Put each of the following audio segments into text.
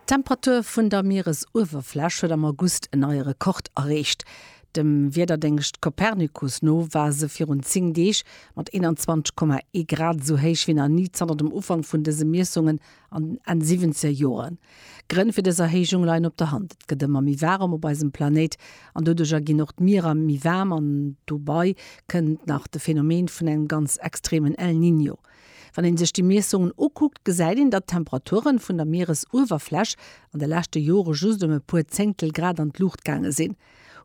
D'Temperatur vun der Mieresuewerfläch huet am August en neie Rekord erreecht. Dem Wiederdéngscht Copernicus no war se virun 10 Deeg mat 21,1 Grad esou héich wéi nach ni zanter dem Ufank vun dëse Miessungen an den Enn siwwenzeger Joren. D'Grënn fir dës Erhéijung leien op der Hand, Et gëtt ëmmer méi waarem op eisem Planéit an doduercher ginn och d'Mierer méi waarm an dobai kënnt nach de Phänomen vun engem ganz extremen El Niño. Wann een sech déi Miessungen ukuckt, gesäit een, datt d'Temperaturen vun der Mieresuewerfläch an de leschte Jore just ëm e puer Zéngtel Grad an d'Luucht gaange sinn.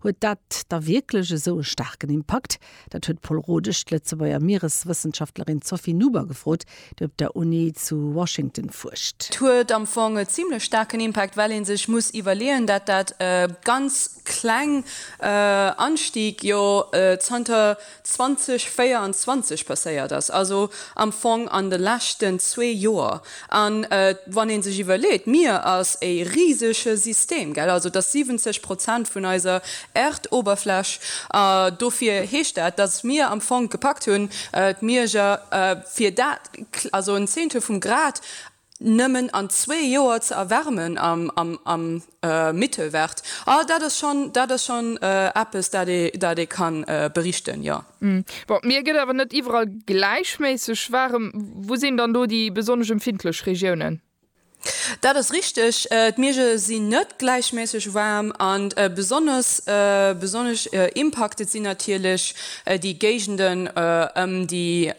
Huet dat da wierklech esou e staarken Impakt? Dat huet d'Pol Rodesch d'Lëtzebuerger Miereswëssenschaftlerin Sophie Nuber gefrot, déi op der Uni zu Washington fuerscht. Et huet am Fong e zimmlech staarken Impakt, well ee sech muss iwwerleeën, datt dat e ganz kleng Anstig jo zanter 2024 passéiert ass, also am Fong an de leschten zwee Joer. An wann ee sech iwwerleet, d'Mier ass e risege System, gell, also et ass 70 Prozent vun eiser Erdoberfläch, dofir heescht dat, datt mir am Fong gepackt hunn, d'Mierger fir dat, also en Zehntel vum Grad, Nëmmen an zwee Joer ze erwärmen am Mittelwert, ah dat ass schonn, dat ass schonn eppes, dat ee, dat ee ka berichten, jo. Bon, mir gëtt awer net iwwerall gläichméisseg waarem. Wou sinn dann do déi besonnesch empfindlech Regiounen? Dat ass richteg, d'Mierge sinn net gläichméisseg waarm an besonnesch, besonnesch impacted sinn natierlech déi Géigenden ëm déi,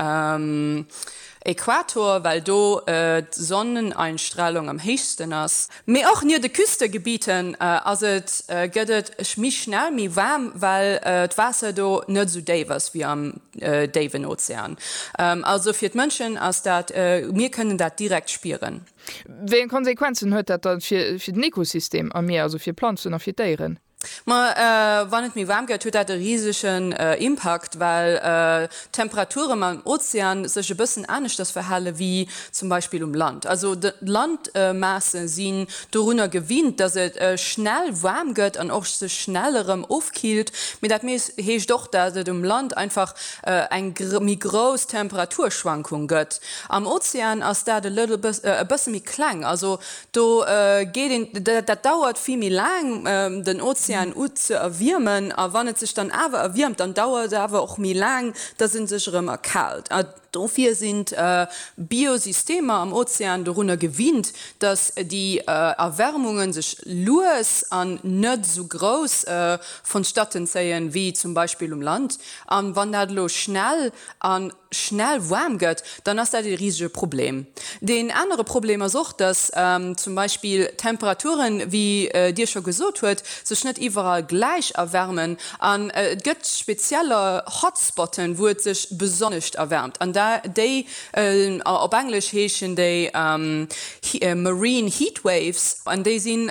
Äquator, well do d'Sonneneinstrahlung am héichsten ass. Mee och nier de Küstegebieten ass et gëtt et méi schnell méi waarm, well d'Waasser do net esou déif ass wéi am déiwen Ozean. Also fir d'Mënschen ass dat, mir kënnen dat direkt spieren. Wéi eng Konsequenzen huet dat da fir den Ekosystem am Mier, also fir d'Planzen a fir d'Déieren? Ma wann et méi waarm gëtt, huet dat e risegen Impakt, well d'Temperaturen am Ozean sech e bëssen aneschters verhale wéi zum Beispill um Land. Also d'Landmaasse sinn dorunner gewinnt, datt et schnell waarm gëtt an och sech schnell erëm ofkillt. Mee dat heescht och, datt et um Land einfach eng méi grouss Temperaturschwankung gëtt. Am Ozean ass dat e bësse méi kleng. Also Do geet een, dat dauert vill méi laang, den Ozean u ze erwiermen. A wann et sech dann awer erwiermt, dann dauert et awer och méi laang, dass e sech erëm erkaalt. A dofir sinn d'Biosystemer am Ozean dorunner gewinnt, dass déi Erwärmunge sech lues an net esou grouss vonstatten zéien, wéi zum Beispill um Land. A wann dat elo schnell an schnell waarm gëtt, dann ass dat ee risege Problem. Deen anere Problem ass och, dass zum Beispill d'Temperature wéi Dir scho gesot huet, sech net iwwerall gläich erwärmen. An et gëtt spezieller Hotspotten, wou et sech besonnescht erwärmt. An déi, op Englesch heeschen déi marine heatwaves, an déi sinn,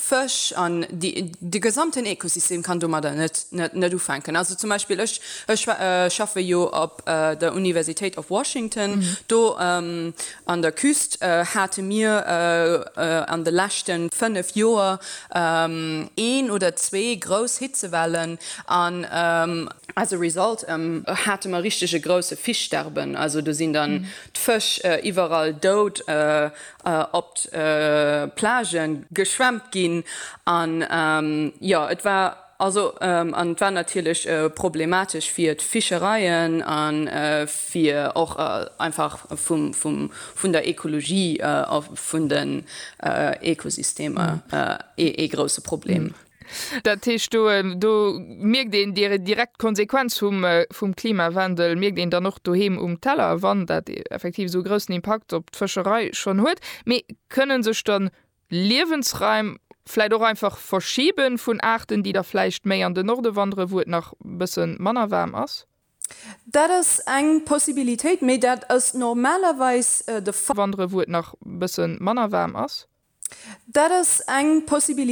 Fësch an de gesamten Ekosystem kann domadder net ufänken. Also zum Beispill ech schaffe jo op der Universitéit of Washington. Do an der Küst hate mir an de leschte 5 Joer een oder zwee grouss Hitzewellen an as a result hate mer richteg e grousse Fischsterben. Also do sinn dann d'Fësch iwwerall dout op d'Plage geschwemmt ginn an jo et war also an et war natierlech problematesch fir d'Fischereien an fir och einfach vun der Ekologie a vun den Ekosystemer ee grousse Problem. Dat heescht, do, do mierkt een déi direkt Konsequenz vum, vum Klimawandel mierkt een dann och doheem um Teller, wann dat effektiv esou e groussen Impakt op d'Fëscherei schonn huet. Mee kënne sech dann Liewensraim vläicht och einfach verschibe vun Aarten, déi da vläicht méi an den Norde wanderen, wou et nach e bësse manner waarm ass? Dat ass eng Possibilitéit, mee dat ass normalerweis de. Wanderen, wou et nach e bësse manner waarm ass? Dat ass eng Possibilitéit.